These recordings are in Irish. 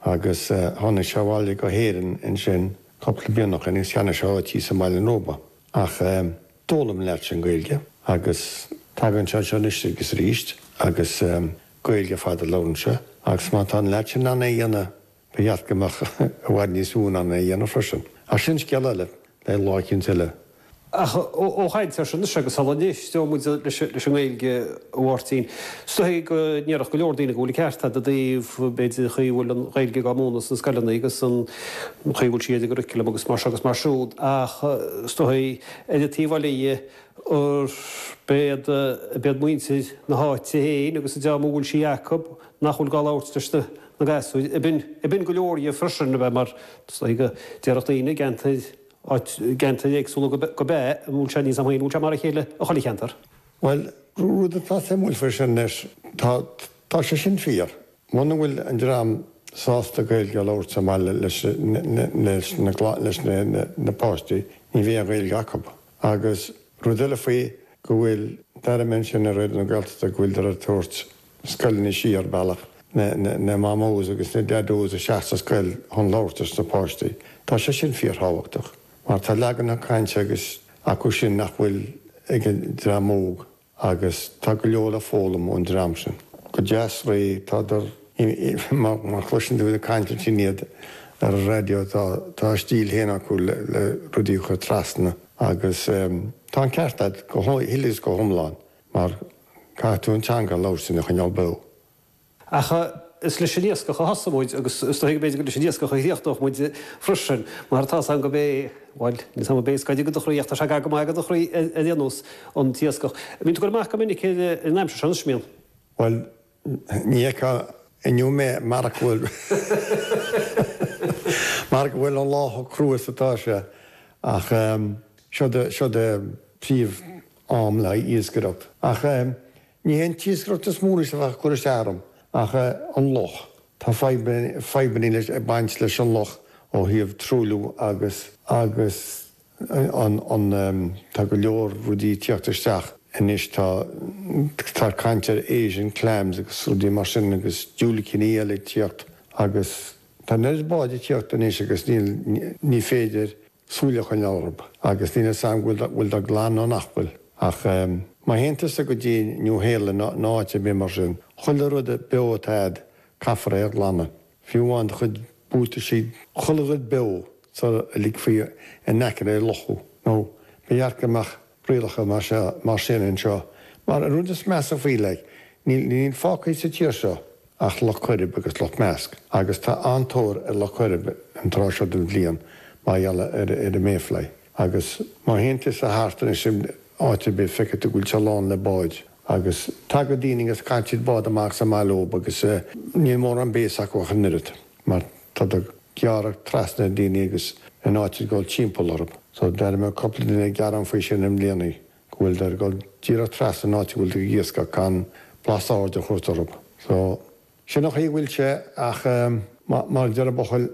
Agus tháinig sé abhaile go hÉirinn ansin cúpla blianacha is cheannaigh sé áit thíos i mBaile an Róba. Ach d'fhoghlaim an lead sin Gaeilge agus tagann sé anseo anois agus aríst agus Gaeilge ar fad a labhrann sé. Agus má tá an lead sin in ann é a dhéanamh ba cheart go mbeadh i bhfad níos mó in ann é a dhéanamh freisin. Ach sin scéal eile, beidh lá eicínt eile Ach ó chaint air sin agus sula n-imeoidh muid leis an nGaeilge ó Mháirtín, is dóigh go ndéarfadh go leor daoine go bhfuil an ceart ar fad ó thaobh, b'fhéidir, an chaoi a bhfuil an Ghaeilge dhá múineadh sna scoileanna agus an chaoi a bhfuil sí ó thaobh curriculum agus mar seo agus mar siúd. Ach is dóigh ar an taobh eile dhe, b'fhéidir, b'fhéidir muintir na háite féin agus an dream a bhfuil sí acu, nach bhfuil gá labhairt leis na gasúir, ag baint, ag baint go leor dhe freisin, a bheith mar, is dóigh go ndéarfadh daoine i gceantair, áit, gceantair éagsúla go, go b'ea, an bhfuil sé níos, an bhfuil sé mar a chéile i chuile cheantar? Bhuel, rud atá suimiúil faoi sin anois, tá, tá sé sin fíor. Muna bhfuil an dream sásta Gaeilge a labhairt sa mbaile leis na, leis na, leis na, na, na páistí, ní bheidh an Ghaeilge acu. Agus rud eile faoi go bhfuil, d'airigh mé ansin ar Raidió na Gaeltachta go bhfuildar ag tabhairt, scoileanna siar bealach na Mamós agus na Daideos isteach sa scoil chun labhairt leis na páistí. Tá sé sin fíorthábhachtach mar tá leaganacha cainte agus acu sin nach bhfuil ag an dream óg agus tá go leor le foghlaim ón dream sin. Go deas réidh, tádar, má chloiseann tú ag caint ansin iad ar an raidió, tá a stíl féin acu le rudaí a chur trasna agus tá an ceart agat go huile is go hiomlán. Mar caithfidh tú an teanga a labhairt lena choinneáil beo. Ach is leis an iascach a thosaigh muid agus is dóigh go mb'fhéidir gur leis an iascach a chríochnódh muid freisin. Mar tá 's a'm go mb'é, bhuel, níl 's a'm an b'é is gaire go do chroí ach tá sé gar go maith go do chroí ar aon nós, an t-iascach. Bíonn tú ag cur amach go minic in aimsir seo anois, an mbíonn? Bhuel, Ní fheicfeá inniu mé mar a bhfuil mar a bhfuil an lá chomh crua is atá sé. Ach seo é seo é an príomh am le haghaidh iascaireacht. Ach ní hé an t-iascaireacht is mó anois a bheadh ag cur isteach orm, ach an loch. Tá fadhbanna fadhbanna leis ag baint leis an loch ó thaobh truailliú agus agus. Tá go leor rudaí ag teacht isteach anois, tá caint ar Asian clams agus rudaí mar sin agus diúilicíní eile ag teacht agus tá an oiread bád ag teacht anois agus níl, ní féidir súil a choinneáil orthu agus níl 'fhios a'm an bhfuil dá nglanadh nó nach bhfuil ach má théann tusa go dtí Nua-Shéalainn nó áit ar bith mar sin, chuile rud beo atá a'd, caithfear é a ghlanadh. Fiú amháin do chuid buataisí, chuile dhuine beo sula ligfí in aice an locha, ní ba dheacair go mbeadh rialacha mar sin anseo, mar an rud is measa faoi, like, níl fágtha sa tír seo ach Loch Coirib agus Loch Measca, agus tá an-tóir ar Loch Coirib an tráth seo den bhliain mar gheall ar an mayfly, agus má théann tusa thart anois áit ar bith, feicfidh tú go bhfuil sé lán le báid. Agus tagadh daoine agus caitheadh bád amach sa mbealach agus níl mórán béasa acu ach an oiread mar tá siad ag gearradh trasna ar dhaoine agus in áit iad a ghoil timpeall orthu. So d'airigh mé cúpla duine ag gearán faoi sin i mbliana go bhfuil siad ag goil díreach trasna in áit a bhfuil tú ag iascach gan blas aird a thabhairt orthu. So Sin an chaoi a bhfuil sé ach mar a deir an buachaill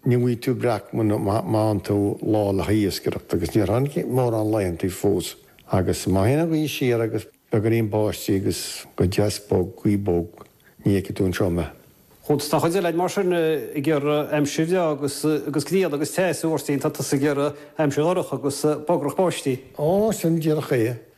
ní bhfaighidh tú breac mura bhfaigheann tú lá le haghaidh iascaireacht agus níor tháinig mórán laetheantaí fós agus má théann an ghaoth siar agus beagáinín báistí agus go deas bog, gaoth bog, ní fheicfidh tú anseo mé. Tá an chuid eile againn mar sin ag iarraidh aimsir bhreá agus agus grian agus teas, Agustín tá tusa ag iarraidh aimsir dhorcha agus bogarnach báistí. Ó, sin díreach é.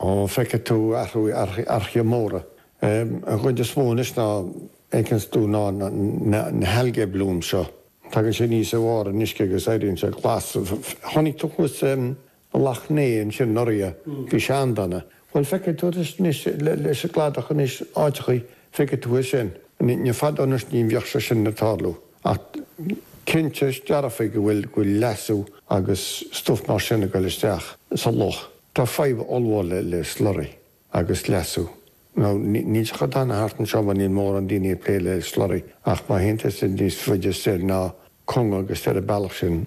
Ó, feicfidh tú athraithe móra. An chuid is mó anois ná éicint dubh ná na hAlgae Bloom seo. Tagann sé aníos i bharr an uisce agus éiríonn sé glas. Chonaic tú thuas Loch nEathach ansin anuraidh. Bhí sé an-dona. Bhuel, feicfidh tú anois leis an gcladach anois áiteachaí, feicfidh tú é sin. Ní fadó anois ní bheadh sé sin ag tarlú. Ach cinnte dearfa go bhfuil leasú agus stuff mar sin ag goil isteach sa loch. Tá fadhb ollmhór le le Slurry agus leasú. Now, níl sé chomh dona thart anseo mar níl mórán daoine ag plé le Slurry ach má théann tú níos faide soir ná Conga agus ar an bealach sin,